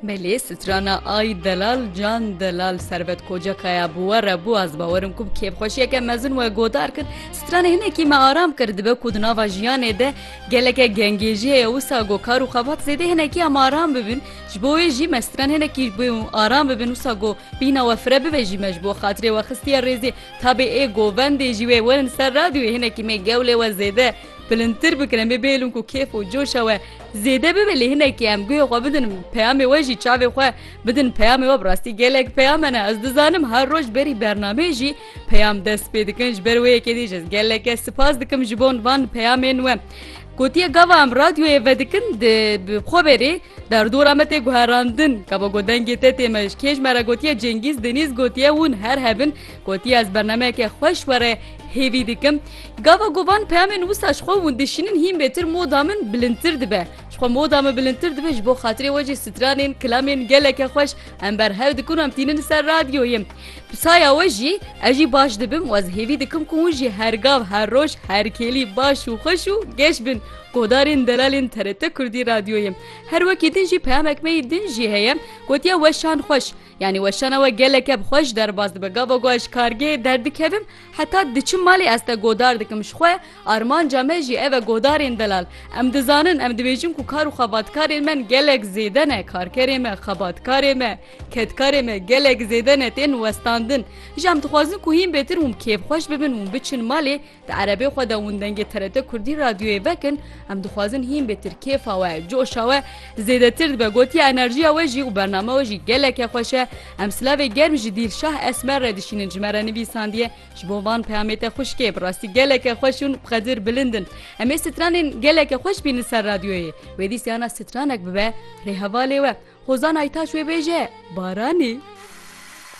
Belê strana Ay delal can delal servet kocakaya bi we re bû ez bawerim ku bi kêfxweşiyeke mezin we godar kir stranê hinekî me aram kir dibe ku di nava jiyanê de geleke gengêjiyê ye wisa go kar û xebat zêdê hinekiya me aram bibin ji bo wê jî me stran hinekî bê û aram bibin wisa go bîna we fire bibe jî me ji bo xatirê we xistiye rêzê tabê ê govendê jî wê werin ser radyoyê hinekî me gewlê we zêde Bilindtir bikin em ê bêlin ku kêf û coşa we zêde bibe lê hinekî em guhê xwe bidin peyamê we jî çavê xwe bidin peyamê we bi rastî gelek peyame ne ez dizanim her roj berî bernameyê jî peyam dest pê dikin ji ber wê yekê dî ji geleke sipas dikim ji bon van peyamên we. Gotiye gava em radyoyê vedikin di bi xwe berê Derdora me tê guherandin. Kabo ku dengê te tê mij. Kêj me re gotiye Cengîz Denîz gotiye hûn her hebin. Gotiye ez bernameyeke xweş were hêvî dikim. Gava ku van peyamên wisa ji xwe hûn dişînin hîn bêtir moda min bilindtir dibe. Ji xwe moda min bilindtir dibe ji bo xatirê we jî stranên kilamên geleke xweş em berhev dikin û em tînin ser radyoyê. Bi saya we jî ez jî baş dibim û ez hêvî dikim ku hûn jî her gav her roj her kêlî baş û xweş û geş bin. Guhdarên delalên TRT Kurdî Radyoyê. Her wekî din jî peyamek me yî din jî heye, gotiye weşan xweş. Yanî weşana we geleke bi xweş derbas dibe. Gava ku ez ji kargehê derdikevim heta diçim malê ez te godar dikim ji xwe. Armanca me jî ev e guhdarên delal. Em dizanin, em dibêjin ku kar û xebatkarên me gelek zêde ne. Karkerê me, xebatkarê me, kedkarê me gelek zêde ne tên westandin. Ji em dixwazin ku hîn bêtir hûn kêfxweş bibin, hûn biçin malê Di erebê xwe de windengê TRT Kurdî radyoyê vekin, em dixwazin hîn bê tir kêfa we, coşa we zêdetir dibe, gotiye enerjiya we jî û bername we jî geleke xweş e. Em silavê germ ji Dîlşah Esmer re dişînin ji me re nivîsandiye ji bo van peyamê te xwişkê bi rastî geleke xweş ûn bi qedir bilind in. Em ê stranên geleke xweş bîn li ser radyoyê. Wê dî siyana stranek bibe rê hevalê we. Hozan Aytaç wê bêje, Baranî.